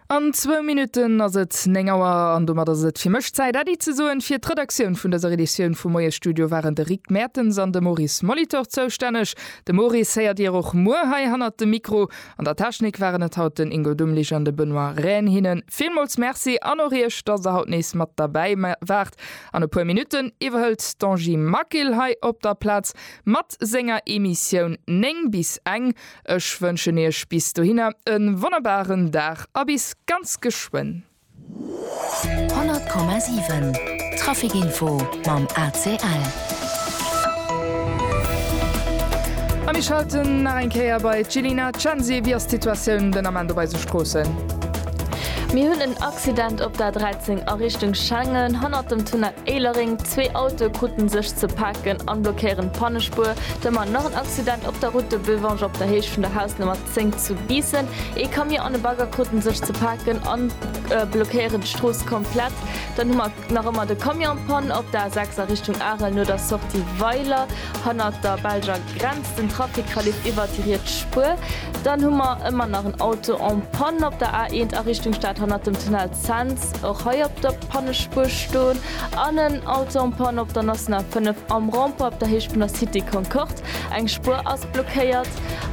An zwou Minutten ass et 9 Auer an domat ass et fir mech Zäit, Äddi ze soen. Fir d'Redaktioun vun dëser Editioun vum Moiesstudio waren de Rick Mertens an de Maurice Molitor zoustänneg. De Maurice héiert Dir och muer hei hannert dem Mikro. An der Technik waren et haut den Ingo Dumlich an de Benoît Rehn. Hinnen villmools Merci an och Iech, dass Der haut nees mat derbäi waart. An e puer Minutten iwwerhëlt d'Angie Maquil hei op der Plaz mat senger Emissioun 9 bis eng. Ech wënschen iech bis dohinner e wonnerbaren Dag a bis ganz geschwënn. 100,7 Trafic Info mam ACL. A mir schalten nach eng Kéier bei d'Jilina Censi. Wéi ass d'Situatioun den Ament op eise Stroossen? Mir hunn en Accident op der 13 a Richtung Schengen, hannert dem Tunnel Éilereng. Zwee Autoe krute sech. Ze paken an blockéieren d'Pannespuer. D'Temmer nach en Accident op der Route de Bevange op der Héicht vun der Hausnummer 10 zu Biissen. Ee Camion an e Bagger kruten sech ze paken an blockéieren d'Strooss komplett. Dann hu mer nach ëmmer de Camion en Panne op der A6 a Richtung Arel no der Sortie Weiler hannert der Belger Grenz. Den Trafic verleeft iwwert déi riets Spuer. Dann hu mer ëmmer nach en Auto en Panne op der A1 a Richtung Stad hannert dem Tunnel Cents. Och hei op der. Pannespuer stoen an en Auto en Panne op der National 5 am Rond-point op der Héicht vun der Cité Concorde. Eng Spuer ass blockéiert.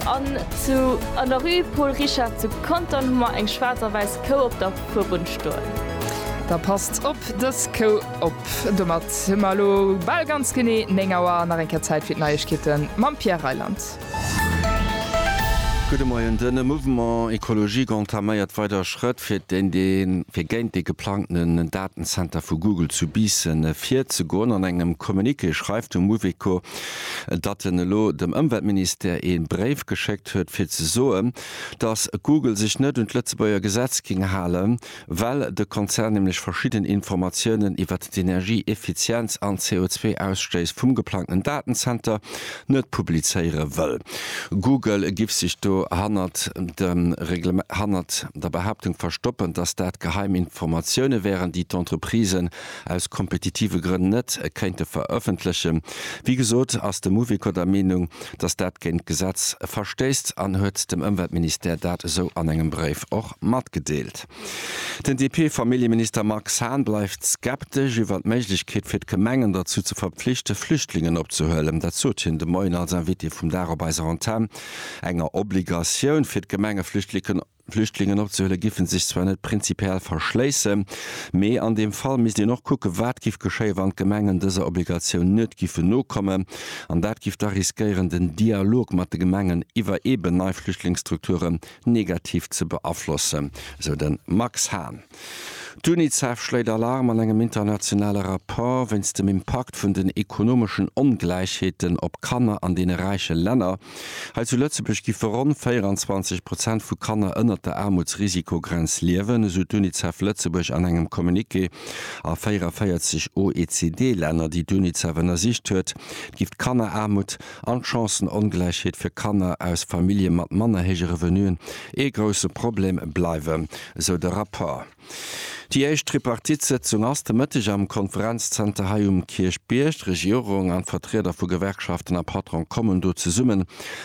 An zu an der Rue Paul Richard zu Contern hu mer eng schwaarz a wäiss Kou op der Fuerbunn stoen. Da passt op dës Kou op. Domat hu mer elo bal ganz genee 9 Auer. Nach eng Kéier Zäit fir d'Neiegkeete mam Pierre Reyland. Gudde Moien. De Mouvement Ecologique entaméiert weider Schrëtt, fir géint dee geplangten Datenzenter vu Google zu Biissen virzegoen. An engem Communiqué schreift de Mouveco, datt en elo dem Ëmweltministère ee Bréif geschéckt huet, fir ze soen, datt Google sech net un d'Lëtzebuerger Gesetz géing halen, Well de Konzern nämlech verschidden Informatiounen iwwert d'Energieeffizienz an d'CO2-Ausstéiss vum geplangten Datenzenter net publizéiere wëll. Google giff sech do hannert hannert der Behaaptung verstoppen, dass dat geheim Informatioune wären, déi d'Entreprisen aus kompetitive Grënn net kéinte verëffentlechen. Wéi gesot, ass de Mouveco der Meenung, dass dat géint d'Gesetz verstéisst an huet dem Ëmweltministère dat esou an engem Bréif och matgedeelt. Den DP-Familljeminister Max Hahn bleift skeptesch iwwer d'Méiglechkeet fir d'Gemengen derzou ze verpflichte Flüchtlingen opzehuelen. Dat sot hien de Moien als Invité vum Dag op eiser Antenn. Enger Obligatioun fir d'Gemenge Flüchtliken Flüchtlingen opzehuelen, giffen sech zwar net prinzipiell verschléissen, mee an deem Fall misst een och kucken, wat giff geschéien, wann d'Gemengen dëser Obligatioun net giffen nokommen. An dat giff da riskéieren, den Dialog mat de Gemengen iwwer eeben nei Flüchtlingsstrukturen negativ ze beaflossen, esou de Max Hahn. D'Unicef schléit Alarm an engem internationale Rapport wéinst dem Impakt vun den ekonomeschen Ongläichheeten op Kanner an deene räiche Länner. Hei zu Lëtzebuerg giffe ronn 24 Prozent vu Kanner ënnert der Aarmutsrisikogrenz liewen, esou d'Unicef Lëtzebuerg an engem Communiqué. A 44 OECD-Länner, déi d'Unicef ënnersicht huet, giff d'Kanneraarmut, an d'Chancen-Ongläichheet fir Kanner aus Famillje mat manner héije Revenuen ee grousse Problem bleiwen, esou de Rapport. Déi éischt Tripartite-Sëtzung ass de Mëtteg am Konferenzzenter hei um Kierchbierg. D'Regierung an d'Vertrieder vu Gewerkschaften a Patron kommen do zesummen,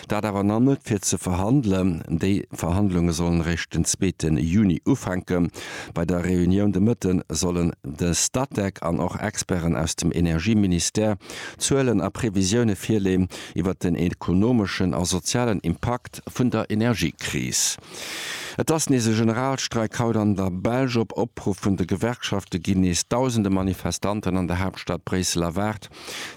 dat awer nach net fir ze verhandelen. Déi Verhandlunge sollen eréischt den zweete Juni ufänken. Bei der Reunioun de Mëtte sollen de Statec an och Experten aus dem Energieministère, Zuelen a Previsioune virleeën iwwert den ekonomeschen a sozialen Impakt vun der Energiekris. Et ass nees e Generalstreik haut an der Belsch. Op Opruff vun de Gewerkschafte ginn nees dausende Manifestanten an der Haaptstad Bréissel erwaart.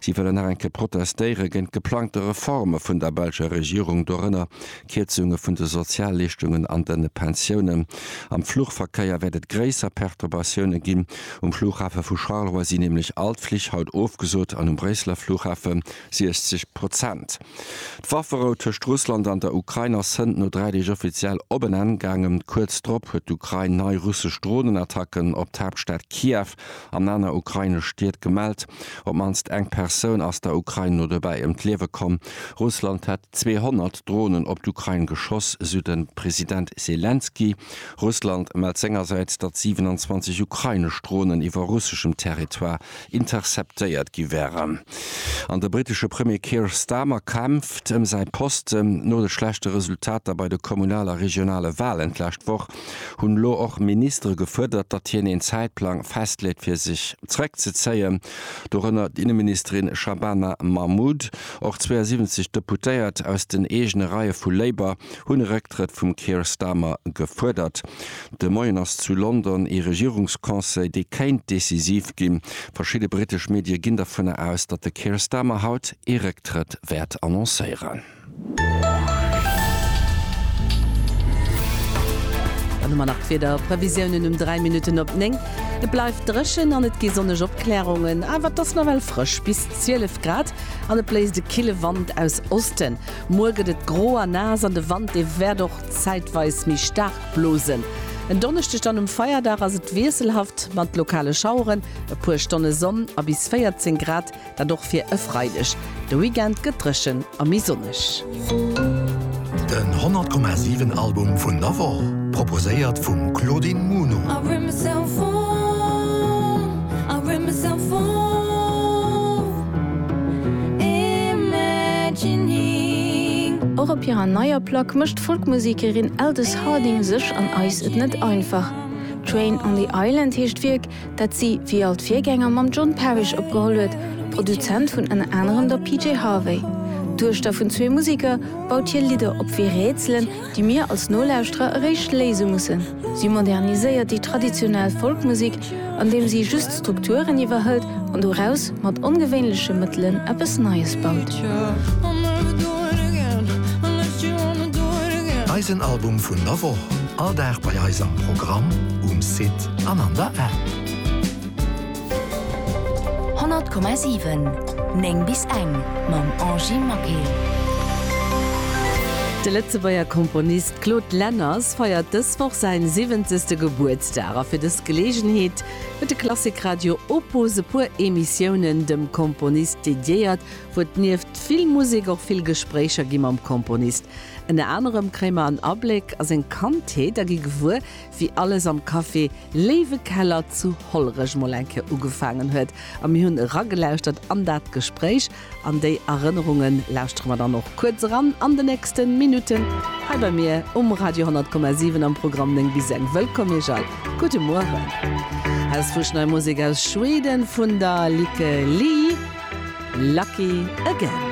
Si wëllen nach eng Kéier protestéiere géint geplangte Reforme vun der belscher Regierung, dorënner Kierzunge vun de Sozialleeschtungen an de Pensiounen. Am Fluchverkéier wäert et gréisser Perturbatioune ginn. Um Flughafe vu Charleroi sinn nämlech all d'Flich haut ofgesot an um Bréisseler Flughafe 60 Prozent. D'Wafferou tëscht Russland an der Ukrain ass hënt no dräi Deeg offiziell op en Enn gaangen. Kuerz drop huet d'Ukrain nei russesch Dronenattacken op d'Haaptstad Kiew an aner ukrainesch Stied gemellt. Op d'mannst eng Persoun ass der Ukrain no dobäi ëm d'Liewe komm. Russland hätt 200 Dronen op d'Ukrain geschoss, esou de President Selenskyj. Russland mellt sengersäits, datt 27 ukrainesch Dronen iwwer russeschem Territoire interceptéiert gi wären. An de brittesche Premier Keir Starmer kämpft ëm säi Posten. No de schlechte Resultater bei de kommunal a regionale Walen d'lescht Woch hunn elo och Ministere gefuerdert, datt hien een Zäitplang festleet fir sech zeréckzezéien. Dorënner d'Inneministerin Shabana Mahmood. Och 72 Deputéiert aus den eegene Reie vu Labour hunn e Récktrëtt vum Keir Starmer gefuerdert. De Moien ass zu London ee Regierungsconseil, dee kéint decisiv ginn. Verschidde brittesch Medie ginn dovunner aus, datt de Keir Starmer haut ee Récktrëtt wäert annoncéieren. Dann hu mer nach d'Wiederprevisiounen um 3 Minutten op 9. Et bleift dréchen an et gi sonneg Opklärungen, awer et ass nawell frësch, bis 12 Grad. An et bléist e kille Wand aus Osten. Muer gëtt et gro a naass an de Wand dee wäert och zäitweis méi staark blosen. En Donneschdeg dann um Feierdag ass et wiesselhaft mat lokale Schaueren, e puer Stonne Sonn a bis 14 Grad, dat och fir e Freideg. De Weekend gëtt dréchen a méi sonneg. Den 100 Komma 7 Album vun der Woch, proposéiert vum Claudine Muno. Och op hirer neier Plack mécht d'Folkmusekerin Aldous Harding sech an eis et net einfach. Train on the Island heescht d'Wierk, dat si wéi all d'Virgänger mam John Parish opgeholl huet, Produzent vun ënner anerem der PJ Harvey. D'Duechter vun zwee Museker baut hir Lidder op wéi Rätselen, déi mir als Nolauschterer eréischt léise mussen. Si moderniséiert déi traditionell Folkmusek, andeem si just d'Strukturen iwwerhëlt an doraus mat ongewéinleche Mëttelen eppes Neies baut. Eisen Album vun der Woch, all Dag bei eis am Programm, um Site. an an der App. 100,7 9 bis eng mam Angie Maquet. De Lëtzebuerger Komponist Claude Lenners feiert dës Woch säi siwwenzegste Gebuertsdag a fir dës Geleegenheet huet de Klassik Radio Opus e puer Emissiounen dem Komponist dediéiert, wou et nieft vill Musek och vill Gespréicher gi mam Komponist. Ënner anerem kréie mer en Abléck a seng Kandheet a gi gewuer, wéi alles am Café Léiwe Keller zu Hollerech mol eng Kéier ugefaangen huet. A mir hunn eragelauschtert an dat Gespréich. An déi Erënnerunge lauschtere mer dann och kuerz eran an de nächsten Minutten hei bei mir um Radio 100,7 am Programm 9 bis eng. Wëllkomm Iech all, gudde Mueren. Aus Fusch nei Musek aus Schweden vun der Lykke Li, Lucky Again.